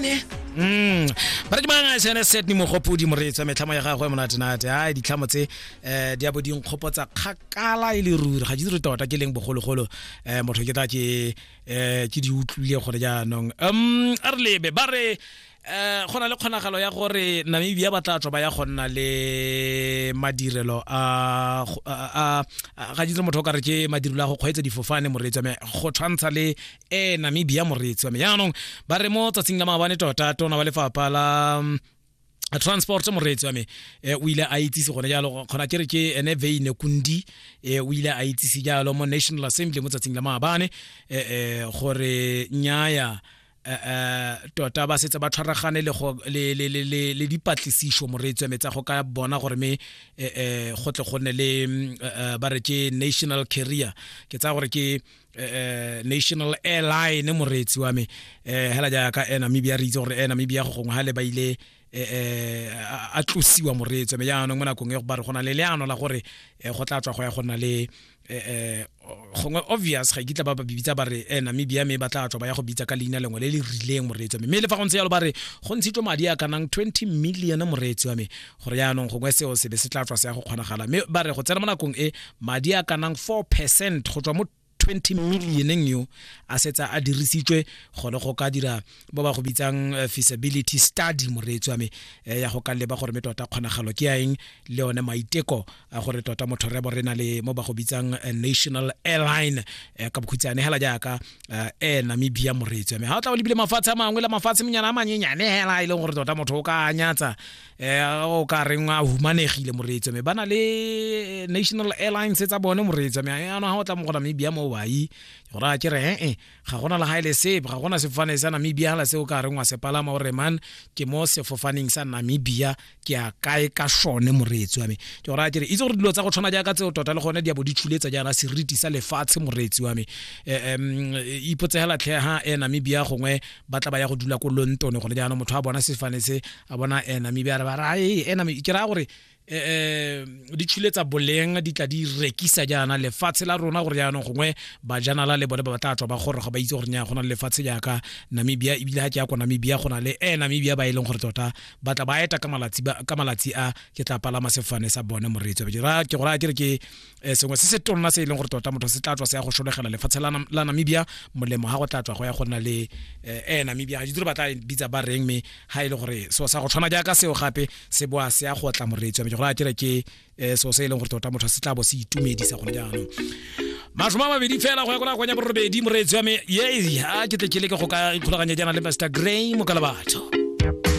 ne Mm. Bara ke mang a sene set ni mogopodi moreetswa metlhamo ya gagwe monate nate. Ha ditlhamo tse eh di abo di nkgopotsa kgakala e le ruri. Ga di re tota ke leng bogologolo eh motho ke tla ke eh ke di utlwile gore jaanong. Um a re lebe ba re eh go na le kgonagalo ya gore Namibia ba tla tswa ba ya go nna le madirelo a go- a a- a- ga ditse motho o ka re ke madirelo a go kgweetsa difofane moreetswa me go tshwantsha le e namibia moreetsi wa me jaanong ba re mo tsatsing la maabane tota tona wa lefapha la mm, transport moreetsi wa me eh, o ile a itsise gone jalo kgona ke re ke ene veine kundi eh, o ile a itsise jalo mo national assembly mo tsatsing la maabane eh, eh, gore nyaya eh, eh, tota ba setse ba tshwaragane le go- le- le- le- le- le dipatlisiso moreetsi wa me tsa go ka bona gore me eh, eh, go tle go nne le mm, eh, eh, ba re ke national carrier ke tsaya gore ke Eh, eh, national airline moreetsi wa me eh hela jaaka eh namibia re itse gore eh namibia go gongwe hale ba ile eh, eh a tlosiwa moreetsi wa me jaanong mo nakong e go ba re gona le leano la gore eh, go tla tswa go ya go nna le eh gongwe obvious ga ikitla ba ba bibitsa ba re eh namibia me ba tla tswa ba ya go bitsa ka leina lengwe le le rileng moreetsi wa me mme le fa go ntse yalo ba re go ntshitswe madi a kanang 20 million moreetsi wa me gore yaanong gongwe seo se be se tla tswa se ya go kgonagala mme ba re go tsena mo nakong e madi a ka nang four percent go tswa mo 20 millioneng yo a setsa a dirisitswe gone go ka dira ba ba go bitsang eh, feasibility study moreetsi wa me eh, ya go ka leba gore me tota kgonagalo ke ya eng le one maiteko a gore tota motho rebo re na le mo ba go bitsang eh, national airline eh, ka bokhutshwane hela jaaka eh, air namibia moreetsi ame ga o tla o lebile mafatshe a mangwe la mafatshe menyana a manyenyane hela e leng gore tota motho o ka anyatsa um o ka reng a humanegile moreetsi ame ba na le national airlines tsa bone moreetsi ame ano ga o tla mo go namibia mo wai gore a kere ee ga gona le gaele sepe ga gona sefofane sa namibia gala se o ka reng wa se palama o reman ke mo sefofaneng sa namibia ke a kae ka sone moreetsi wa me ke gore a kere itse gore dilo tsa go tshwana jaaka tseo tota le gone di a bo di tshuletsa jaana seriti sa lefatshe moreetsi wa me um ipotsegela tlhe ha e namibia gongwe ba tla ba ya go dula ko lontone gone jaanong motho a bona sefane se a bona e namibia re ba ra e e ke raya gore eh di tshuletsa boleng di tla di rekisa jaana lefatshe la rona gore jaanong gongwe bajanala le bone ba batla tswa ba gore ga ba itse gore nya go na le lefatshe jaaka namibia ebile ga ke ya kwa namibia go na le e namibia ba e leng gore tota ba tla ba eta ka malatsi a ke tla palama sefane sa bone moreetsi ke gore a ke re ke um sengwe se se tonna se e leng gore tota motho se tla tswa se ya go solegela lefatshe la namibia molemo ga go tla tswa go ya go nna le um namibia ga ditiro ba tla bitsa ba reng mme ga e le gore seo sa go tshwana jaaka seo gape se boa se ya go tla moreetsi wa me gore a kere ke um seo se e leng gore tota motho se tla bo se itumedisa gone jaanong masome a mabedi fela go ya ko nakong ya borobedi moreetsi wa me ye a ke tle ke leke go ka ikgolaganya jaana le master gray mokalabatho